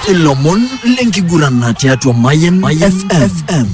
ilomon lenkiguran tiatua Mayan FM.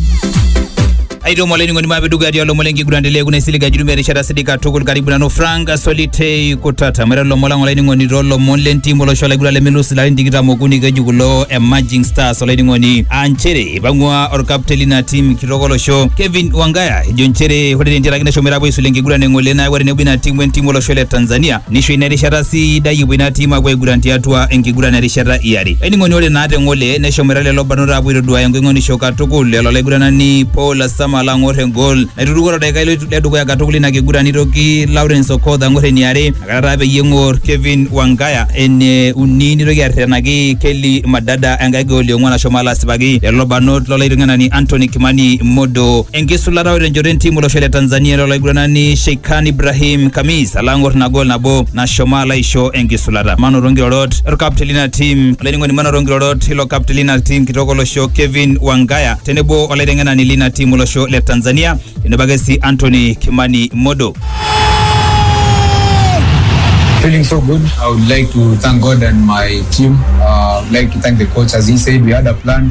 aitoo mwalaining'oni maapeduka atii olomon lenkiguran telee kuna isilig ajuru merishata sidik katukul karibu nanu frank solitei kutata mwera lomon lang olaining'oni toolomon lentim olosho laiguran lemelus ilarin tikitam okuni keji kulo emerging stars olaining'oni aa nchere ipang'ua orkapten lina tim kitok olosho kevin wangaya ejo nchere ore tentiaraki neshomoita apuo aisula enkiguran eng'ole nayawua tenebo ina tim wentim olosho le tanzania Nisho ina erishata sidai epuo ina tim apuo aiguran tiatua enkiguran erishata iare. Ening'oni ore naa te ng'ole neshomoita lelo barnot apuo aitoduaya engoing'onisho katukul lelo laiguranani Paul Asamal ang'or engol naituruko to daikai le dukuya katukul ina kiguran nitoki Lawrence Okoth ang'or eniare nakata taa peyie eng'or Kevin Wangaya ene uni nitoki arretenaki Kelly Madada enkae gol e ong'uan ashomo alo asipaki lelo barnot lo laiteng'enani Anthony Kimani Modo enkisulata o tenchoto entim olosho le Tanzania ilo laiguranani Sheikhan Ibrahim Kamis alo ang'or ina gol nabo nashomo alo aisho enkisulata. Manoto nkirorot olkapteni lina tim olainining'oni manoto nkirorot ilo kapteni lina tim kitok olosho Kevin Wangaya tenebo olaiteng'enani lina tim olosho le Tanzania tenebo ake sii Anthony Kimani Modo. Feeling so good. I would like to thank God and my team. Uh, I would like to thank the coach. As he said, we had a plan.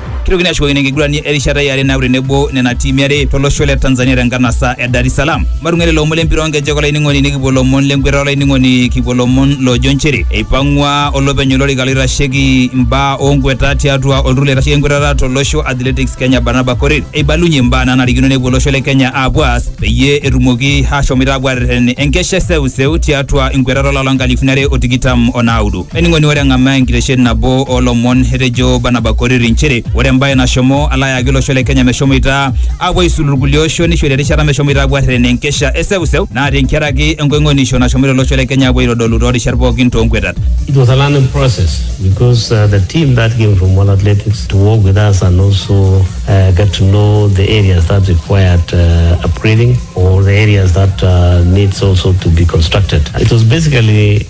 Kitokini ashukokino enkigurani erishata yare naaku tenebo nena tiimi are tolosho le Tanzania tenkanasa e Dar es Salaam. Matung'arie lomon lempira onkejek olainining'oni nikipuo lomon lenkweta olainining'oni kipuo lomon loojo nchere eipang'ua olopeny olorika loitasheki imbaa onkweta tiatua olturur loitasheki enkwetata tolosho Athletics Kenya Barnaba Korir eibalunye imbaa nanarikino nepuo olosho le Kenya aapuo aas peyie etumoki ashomoita apuo arreten enkesha e seuseu tiatua inkwetata olapa lonkalifuni are o tikitam o naudo. Ainining'oni ore eng'amaa enkitesheni nabo oolomon etejo Barnaba Koriri nchere ore embae nashomo alo ayaki olosho le Kenya meshomoita aapuo aisulu irkulie oshon nishori erishata meshomoita aapuo arreren enkesha e seuseu naa tenkaraki enkoing'onisho nashomoita olosho le Kenya aapuo aitodolu too rishat pookin too nkuetat. It was a learning process because uh, the team that came from World Athletics to work with us and also uh, get to know the areas that required uh, upgrading or the areas that uh, needs also to be constructed. It was basically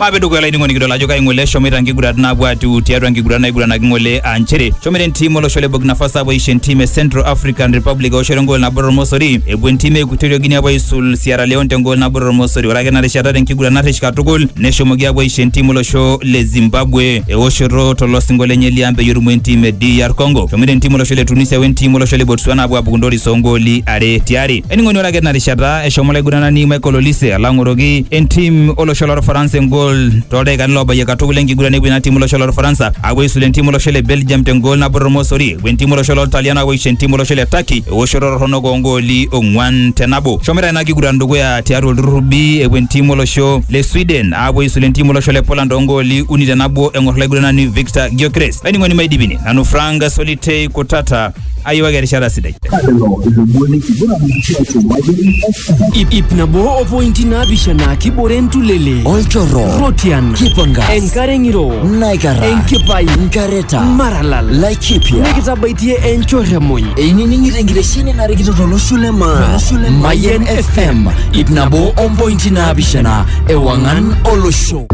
maape dukuya olainining'oni kidol ajo kai ng'ole eshomoita nkigurat naapuo atiu tiatua nkigurat naiguranaki ng'ole aa nchere shomoita entim olosho le Burkina Faso apuo aisho entim e Central African Republic eoshoto engol nabo tormosori epuo entim e Equatorial Guinea apuo aisul Sierra Leone tengol nabo tormosori ore ake ena rishata tenkiguran narrish katukul neshomoki apuo aisho entim olosho le Zimbabwe eoshoto tolosingo lenye liang peyie erumu entim e DR Congo shomoita entim olosho le Tunisia wentim olosho le Botswana apuo apuku ntoris oongooli are tiari. Ening'oni ore ake tina rishata eshomo olaiguranani Michael Olise alo ang'oroki entim olosho lorfaransa engol toldaikani loobayie katukul enkiguran epuo ina tim olosho lorfaransa apuo aisula entim olosho le Belgium tengol nabo tormosori epuo entim olosho loltalian apuo aisho entim olosho le Turkey ewoshoto torronok oongooli ong'wan te nabo. Shomoita ina kiguran dukuya tiatua olturrur B epuo entim olosho le Sweden apuo aisula entim olosho le Poland oongooli uni te nabo eng'or olaiguranani Victor Gyökeres. Laining'oni maidipini nanu Frank Solitei Kutata ayiwaki erishata sidai Ip, ip nabo o pointi naapishana kibore ntulele olchorro rotian kipangas enkare ng'iro naikara enkipai nkareta maralal laikipia nikitabaitie enchorremuny einining'ito enkitesheni narikito tolosho le maa mayen fm ip nabo ompointi naapishana ewang'an olosho